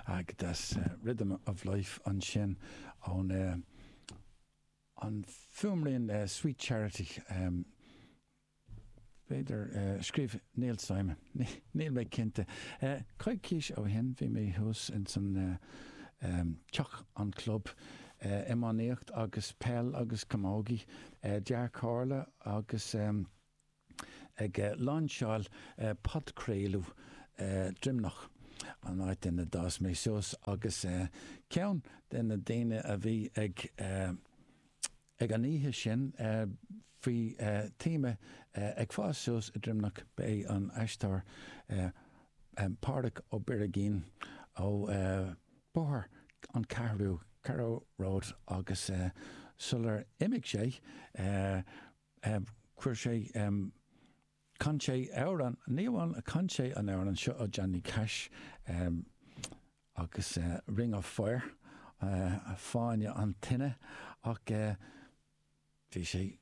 Agus Rhythm of life ansin ón an fuaimrian Sweet Charity, b'fhéidir, scríobh Neil Simon, níl mé cinnte. Coicís ó shin bhí mé thuas ins an teach, an club iománaíocht agus peil agus camógaí, Dea-Chomhairle agus. ag lainseáil podchraoladh Droimneach, an áit ina d'fhás mé suas, agus ceann de na daoine a bhí ag an oíche sin faoi théama Ag Fás Suas i Droimneach ba é an t-aisteoir Pádraig Ó Beirgín ó Bhóthar an Cheathrú, Carrow Road, agus sular imigh sé, Chuir sé, chan sé amhrán, ní amháin chan sé an amhrán seo ó Johnny Cash agus Ring of Fire, Fáinne an Tine, ach bhí sé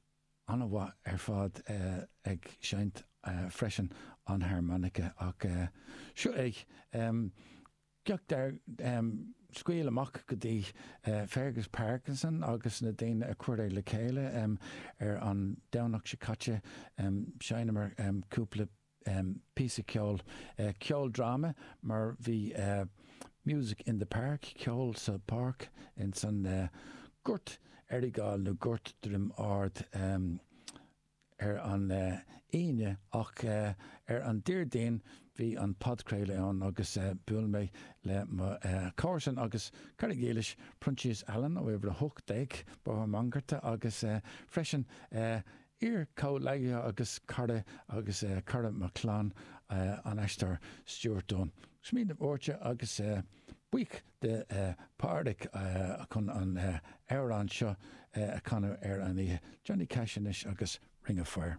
an-mhaith ar fad ag seinnt freisin an harmonica ach seo é. Scairt a scaoil amach go dtí Fergus Parkinson agus na daoine a chuir é le chéile ar an Domhnach seo caite. Sheinneamar cúpla píosa ceoil, ceoldráma mar bhí Music in the Park, Ceol sa Pháirc, insan Gort Earrigáil nó Gort Druim Ard. ar an Aoine ach ar an Déardaoin bhí an podchraoladh ann agus bhuail mé le mo chomharsan agus cara dílis Proinsias Allan ó Uimhir 18 Bóthar Mhangarta agus freisin iar-chomhleacaithe agus cara agus cara mo chlann an aisteoir Stuart Dunne. Smaoineamh áirithe agus buíoch de Pádraig chun an amhrán seo a chanadh ar an oíche, Johnny Cash anois agus Ring of Fire.